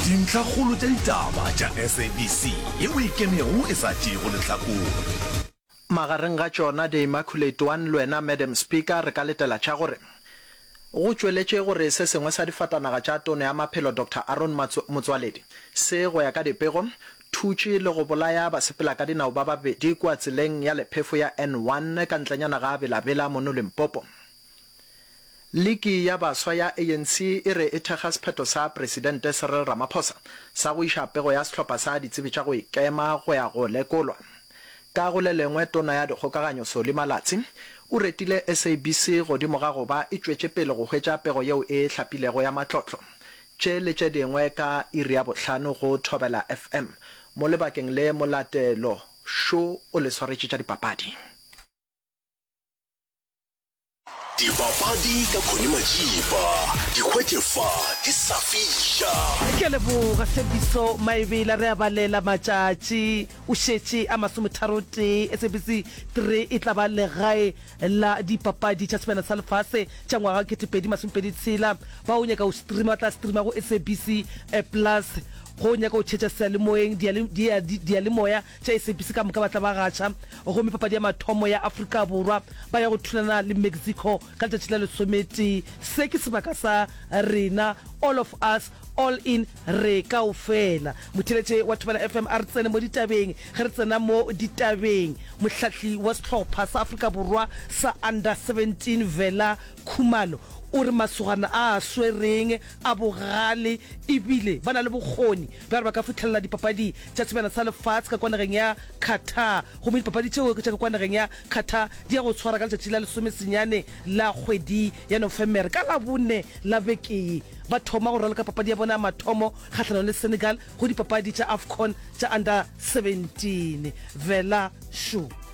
Dintlhakgolo tša ditaba tša SABC ye o e kemego e sa tšeego lehlakore. Magareng ga tšona, The Immaculate One le wena Madam Speaker, re ka letela tša gore go tšweletše gore se sengwe sa difatanaga tša Tono ya Maphelo Doctor Aaron Motsoaledi se, go ya ka dipego, thutše le go bolaya basepelakadinao ba babedi kua tseleng ya lephefo ya N1 ka ntlenyana ga Bela-Bela mono Limpopo. Liki ya baswa ya ANC e re e thekga sephetho sa Presidente Cyril Ramaphosa sa go iša pego ya sehlopha sa ditsebi tša go ikema go ya go lekolwa. Ka go le lengwe, Tona ya Dikgokaganyo Solly Malatsi o retile SABC godimo ga go ba e tšwetše pele go hwetša pego yeo e hlapilego ya matlotlo. Tše le tše dingwe ka iri ya bohlano go Thobela FM. Mo lebakeng le Molatelo Show o le swaretše tša dipapadi. Dibapadi ka Connie Majiba, di hwetše fa ke sa fiša. Ke a leboga Tshepiso Maebela re a balela matšatši o šetše a masometharotee SABC 3 e tla ba legae la dipapadi tša sebjana sa lefase tša ngwaga wa 2026 ba o nyaka go streama ba tla streama go SABC plus go o nyaka go tšhetša sealemoeng diyalemoya Tša SABC ka moka ba tla ba gaša gomme papadi ya mathomo ya Afrika Borwa ba ya go thulana le Mexico ka letšatši la lesometee. Se ke sebaka sa rena, all of us, all in, re kaofela. Motheeletše wa Thobela FM a re tsene mo ditabeng. Ge re tsena mo ditabeng, mohlahli wa sehlopha sa Afrika Borwa sa Under 17 Vela Khumalo o re masogana a a swereng a bogale ebile ba na le bokgoni Ba re ba ka fihlelela dipapadi tša sebjana sa lefaatshe ka kwa nageng ya Qatar gomme dipapadi tšeo ke tša ka kwa nageng ya Qatar di ya go tshwara ka letšatši la lesome senyane la kgwedi ya Nofemere. Ka Labone la beke ye ba thoma go raloka papadi ya bona ya mathomo kgahlanong le Senegal go dipapadi tša Afcon tša Under 17. Vela Shoe.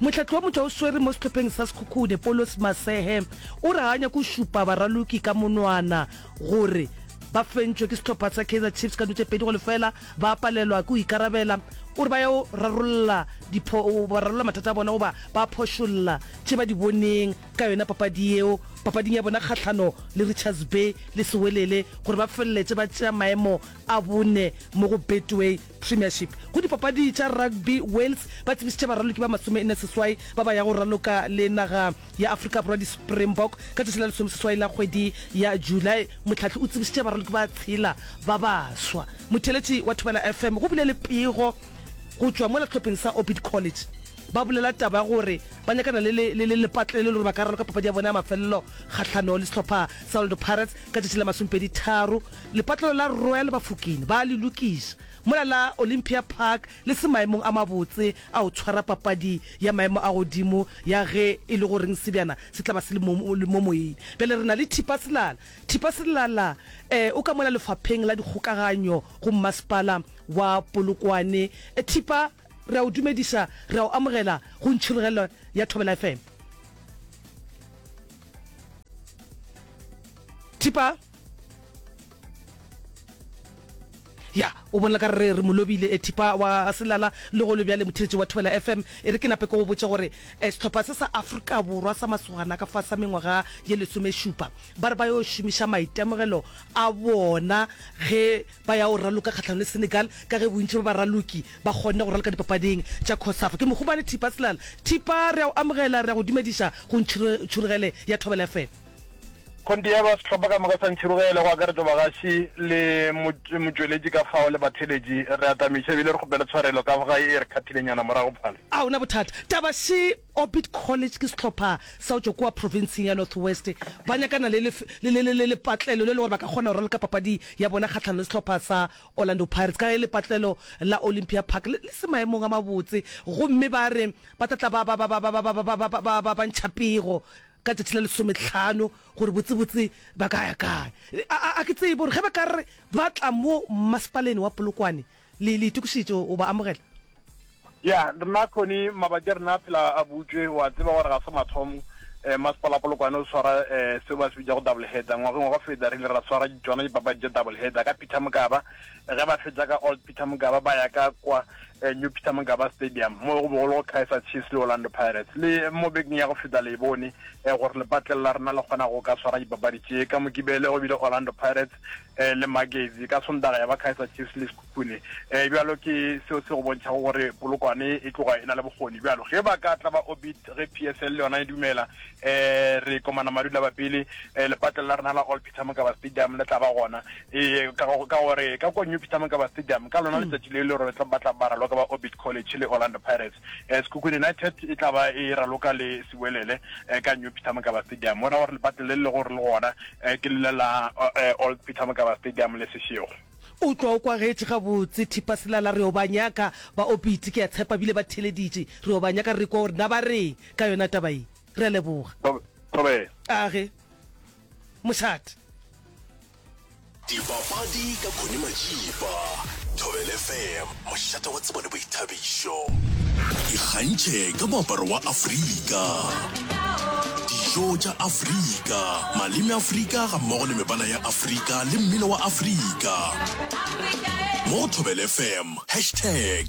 Mohlahli wa motšwa o swere mo sehlopheng sa Sekhukhune, Paulos Masehe, o re ga a nyake go šupa baraloki ka monwana gore ba fentšwe ke sehlopha sa Kaizer Chiefs ka dilo tše pedi go lefela, ba palelwa ke go ikarabela. O re ba yo rarolla mathata a bona goba ba phošolla tše ba di boneng ka yona papadi yeo papading ya bona kgahlano le Richards Bay le Sewelele gore ba feleletše ba tšea maemo a bone mo go Betway. Premiership. Go dipapadi tša rugby, Wales ba tsebišitše baraloki ba masome-nne seswai ba ba yago raloka le naga ya Afrika Borwa di-Springbok ka tšatši la lesomeseswai la kgwedi ya July. Mohlahli o tsebišitše baraloki ba tshela ba baswa. Motheeletši wa Thobela FM go bile le pego go tšwa mola sehlopheng sa Orbit College. Ba bolela taba ya gore ba nyakana le lepato le le gore ba ka raloka papadi ya bona ya mafelelo kgahlano le sehlopha sa Orlando Pirates ka tšatši la masomepedi tharo Lepatlelo la Royal Bafokeng ba a le lokiša, mola la Olympia Park le se maemong a mabotse a go tshwara papadi ya maemo a godimo ya ge e le goreng sebjana se tla ba se le mo moyeng. Bjale re na le Thipa Selala. Thipa Selala eh, o ka mola lefapheng la dikgokaganyo go mmasepala wa Polokwane. Thipa, re a o dumediša, re a o amogela go ntšhirogelo ya Thobela FM. Thipa. ya o bona ka re re molobile e thipa wa selala le go lebjale motheletši wa thobela fm e re ke nape ke go botse gore eh, sehlopha se sa afrika borwa sa masogana ka fa sa mengwaga ye lesomešupa ba re ba yo šomiša maitemogelo a bona ge ba ya o raloka kgatlhanong le senegal ka ge bontši ba baraloki ba kgonne go raloka dipapading tša cosafa ke mohumane thipa selala thipa re a o amogela re a go dumediša go ntšhurugele ya thobela fm Kgonthe ya ba sehlopha ka moka sa Ntšhirogele, go akaretšwa bagaši le motšweletši ka fao le batheeletši, re atamiša ebile re kgopela tshwarelo ka ga e re kgathileng yana morago phale. A go na bothata taba še? Orbit College ke sehlopha sa go tšwa kua profenseng ya North West. Ba nyakana le lepatlelo le le gore ba ka kgona go raloka papadi ya bona kgahlano le sehlopha sa Orlando Pirates ka ge lepatlelo la Olympia Park le se maemong a mabotse gomme ba re ba tla tla ba ba ntšha pego ka tšatši la lesometlhano gore botsebotse ba ka ya kae. A, a ke tsebe gore ge ba ka re ba tla mo mmasepaleng wa Polokwane, le, le itokišetše go ba amogela? Ya, rena Connie, mabaki a rena a phela a butšwe. O a tseba gore ga se mathomo um masepala wa Polokwane o swara um seo ba se bitšago double header. Ngwageng wa go feta re ile ra swara tšona dipapadi tša double header ka Peter Mokaba, Ge ba fetša ka Old Peter Mokaba ba ya ka kwa New Peter Mokaba Stadium mo go be go le go Kaizer Chiefs le Orlando Pirates. Le mo bekeng ya go feta le e bone gore lepatlelo la rena le kgona go ka swara dipapadi tše. Ka Mokibele go bile Orlando Pirates le Magezi, ka Sontaga ya ba Kaizer Chiefs le Sekhukhune. Bjalo ke seo se go bontšhago gore Polokwane e tloga e na le bokgoni. Bjalo ge ba ka tla ba Orbit ge PSL le yona e dumela, re komana madu la bapele, lepatlelo la rena la Old Peter Mokaba Stadium le tla ba gona Ee, ka go ka gore ka kwa New Peter Mokaba Stadium ka lona letšatši le le gore ba tla ba raloka ba Orbit College le Orlando Pirates. Eh, Sekhukhune United e tla ba e raloka le Sewelele eh, ka New Peter Mokaba Stadium. Bona gore lepatle le le lego gore le gona eh, ke lele la eh, Old Peter Mokaba Stadium le Sešego. O tlwa o kwagetše gabotse thipa selala re o ba nyaka ba Orbit ke a tshepa bile ba theleditše re o ba nyaka re kwa gore na ba reng ka yona taba ye. Re a leboga. Thobela. Age. mošate. Dipapadi ka Connie Majiba, Thobel FM, mošate wa tsebo le boithabišo. Ikgantšhe ka moaparo wa Afrika, dijo tša Afrika, maleme Afrika gammogo le mebala ya Afrika le mmino wa Afrika mo go Thobel FM, hashtag